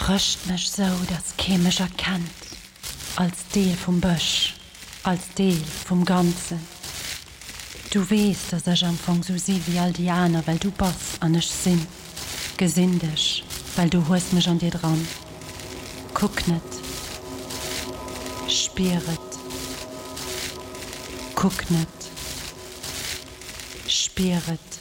Rëscht mech sou dass kee mech erkennt, als Deel vum Bësch, als Deel vum Ganzen. Du weess dass ech am Fong sou si wéi all déi aner well du bass an ech sinn, gesinn dech well du hues mech an dir dran. Kuck net, spier et, kuck net, spier et.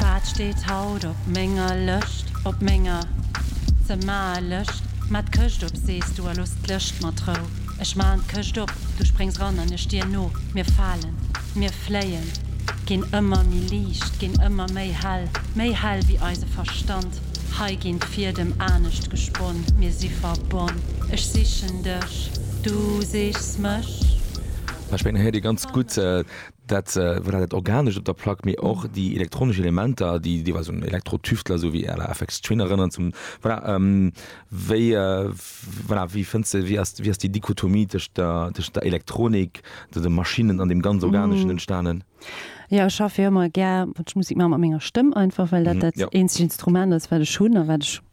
Wat steet haut op menger Lëscht, op menger ze maer Lëscht? Ma d'Këscht op, sees du, a looss d'Lëscht mat Rou. Ech maachen d'Këscht op, du spréngs ran an ech dir no. Mir falen, mir fléien, ginn ëmmer méi liicht, ginn ëmmer méi hell, méi hell ewéi eise Verstand. Hei ginn d'Fiedem anescht gesponn, mir si verbonn. Ech sichen dech, du sichs mech. Ech mengen, hei héiert ee ganz gutt, Dat voilà, dat Organescht op der Plack, mee och déi elektronesch Elementer, déi deelweis un Elektro-Tüftler esou wéi à la Aphex Twin erënneren zum voilà. Wéi voilà, wéi fënns de, wéi ass, wéi ass déi Dichotomie tëscht der, tëscht der Elektronik, de, de Maschinnen an deem ganz Organeschen entstanen? Jo, ech schaffe jo ëmmer gär, wann ech Musek maachen, mat menger Stëmm einfach, well dat dat eenzegt Instrument ass, wat ech hunn a wat ech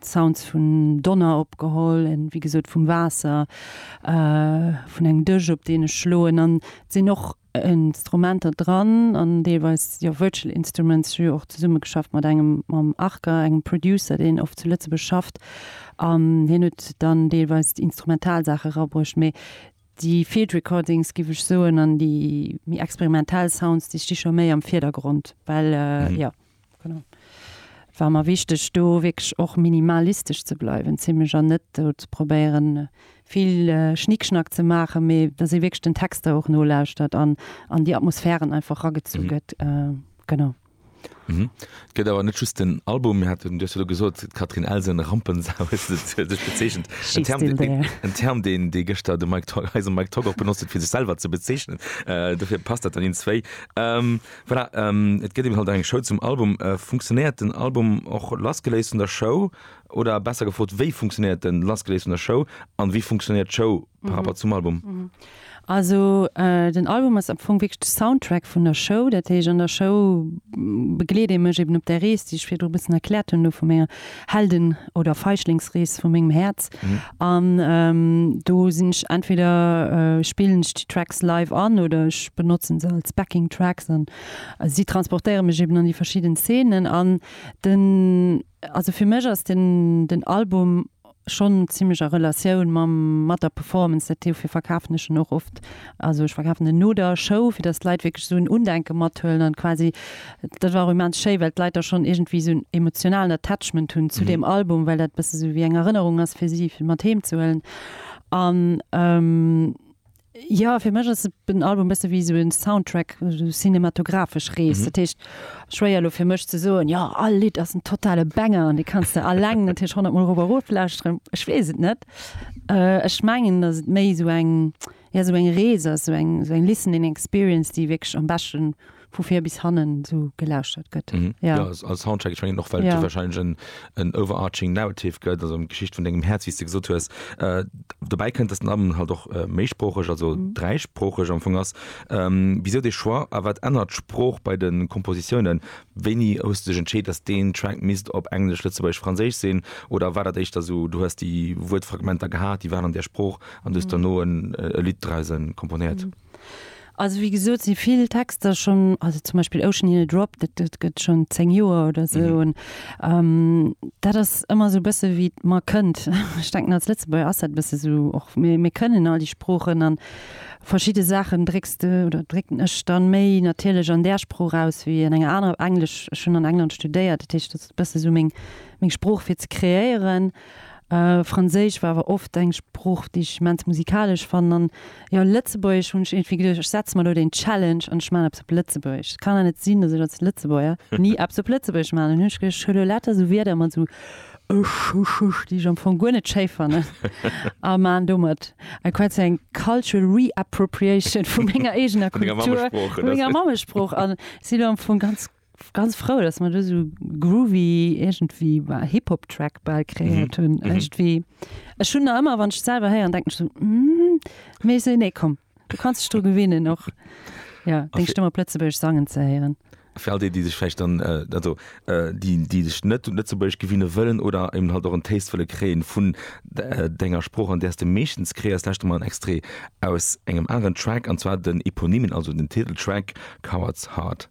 Sounds vun Donner opgeholl, wéi gesot vum Waasser, vun engem Dësch op deen ech schloen an et sinn och Instrumenter dran an deelweis jo virtual instruments. Ech hu jo och zesumme geschafft mat engem, mam Arca, engem Producer deen oft zu Lëtzebuerg schafft an hien huet dann deelweis instrumental Saache erabruecht. Mee déi field recordings giff ech soen an déi méi experimentell Sounds déi sti scho méi am Virdergrond, well jo. Genau. Et war mer wichteg, do wierklech och minimalistesch ze bleiwen, zimlech, an net do ze probéieren, vill Schnickschnack ze maachen, mee dass ee wierklech den Texter och nolauschtert an an déi Atmosphären einfach ragezu gëtt. Genau. Mhm. Et gëtt awer net just den Album. Mir haten, du hues jo elo gesot, d'Catherine Elsen, Rampensau huet se fir sech bezeechent. En Term, den, den, en Term, deen, dee gëschter de Mike Togg, eise Mike Togg och benotzt huet, fir sech selwer ze bezeechnen. Äh, dofir passt dat dann iins zwéi. Ähm, Voilà, et gëtt eben halt eng Show zum Album. Funktionéiert den Album och lassgeléist vun der Show? Oder besser gefrot, wéi funktionéiert en lassgeléist vun der Show? An wéi funktionéiert d'Show par rapport zum Album? Also den Album ass am Fong wierklech de Soundtrack vun der Show. Dat heescht an der Show begleet ee mech eben op där Rees, déi ech virdru e bëssen erkläert hunn, do vu menger Helden oder Feischlingsrees vu mengem Häerz an do sinn ech entweder spillen ech déi Tracks live an oder ech benotzen se als Backing Tracks an si transportéiere mech eben an déi verschidden Szenen an den also fir mech ass den den Album schonn zimmlech a Relatioun mam mat der Performance dat dofir verkafen ech en och oft also ech verkafen en no der Show fir datt d'Leit wierklech esou en Undenken mathuelen an quasi Dat war och immens schéi, well d'Leit da schonn iergendwéi esou en emotionalen Attachment hunn zu deem Album, well dat e bësse sou wéi eng Erënnerung ass fir si, fir mat heem ze huelen. An jo, fir mech ass den Album e bësse wéi esou e Soundtrack, esou cinematographesch Rees. Dat heescht, schwéier elo fir mech ze soen, jo, all Lidd ass en totale Banger an dee kanns de alleng natierlech honnert Mol erof a rof lauschteren. Ech weess et net. Ech mengen, datt et méi esou eng. Ja, esou eng Rees ass esou eng, esou eng listening experience, déi wierklech am beschten vu vir bis hannen esou gelauschtert gëtt. Mhm. Ja. Jo, als Soundtrack, ech mengen och, well et jo Ja. warscheinlech en, en overarching narrative gëtt, also eng Geschicht vun dengem Häerz, wéi s de gesot hues. Äh, dobäi kënnt, dass den Album halt och äh, méisproocheg, also Mhm. dräisproocheg am Fong ass. Ähm, wisou dee Choix a wat ännert d'Sprooch bei de Kompositiounen? Wéini hues du dech entscheet, dass deen Track misst op Englesch, Lëtzebuergesch, Franséisch sinn? Oder war dat éischter esou, du hues déi Wuertfragmenter gehat, déi waren an där Sprooch An du hues dono e Lidd drausse komponéiert. Also wéi gesot si vill Texter schonn, also zum Beispill Ocean Hill Drop, dat gëtt schonn zéng Joer oder esou. An dat ass ëmmer esou e bësse wéi et mer kënnt. Ech denken als Lëtzebuerger ass dat e bësse esou och, mir mir kënnen all déi Sproochen an verschidde Saachen drécks de oder drécken ech dann méi natierlech an där Sprooch aus wéi an enger anerer. Englesch, ech hunn an England studéiert, dat heescht dat ass e bësse esou meng meng Sprooch fir ze kreéieren. Franséisch war awer oft eng Sprooch, déi ech immens musikalesch fannen. An jo, Lëtzebuergesch hunn ech iergendwéi geduecht, ech setze mer elo den Challenge an ech maachen eppes op Lëtzebuergesch. Et kann awer net sinn, datt ech als Lëtzebuerger ni eppes op Lëtzebuergesch maachen. An hunn ech geduecht, ech huelen elo lauter esou Wierder mat esou ech, ech, ech, déi ech am Fong guer net schéi fannen a maachen domat quasi eng cultural re-appropriation vu menger eegener Kultur, vu menger Mammesprooch. Vu menger Mammesprooch. An si elo am Fong ganz. Ganz frou dass mer do sou groovy iergendwéi bah Hip Hop Track bal kreéiert hunn iergendwéi. Ech hunn nach ëmmer wann ech selwer héieren denken ech sou hm mee ech sou nee komm du kanns dech dru gewinnen och jo deng Stëmm op Lëtzebuergesch sangen ze héieren. Fir all déi déi sech vläicht dann also déi déi sech net un Lëtzebuergesch gewinne wëllen oder eben halt och en Taste wëlle kréien vun denger Sprooch an där s de meeschtens kreéiers lauschte mer en Extrait aus engem aneren Track an zwar den Eponymen also den Titeltrack Coward's Heart.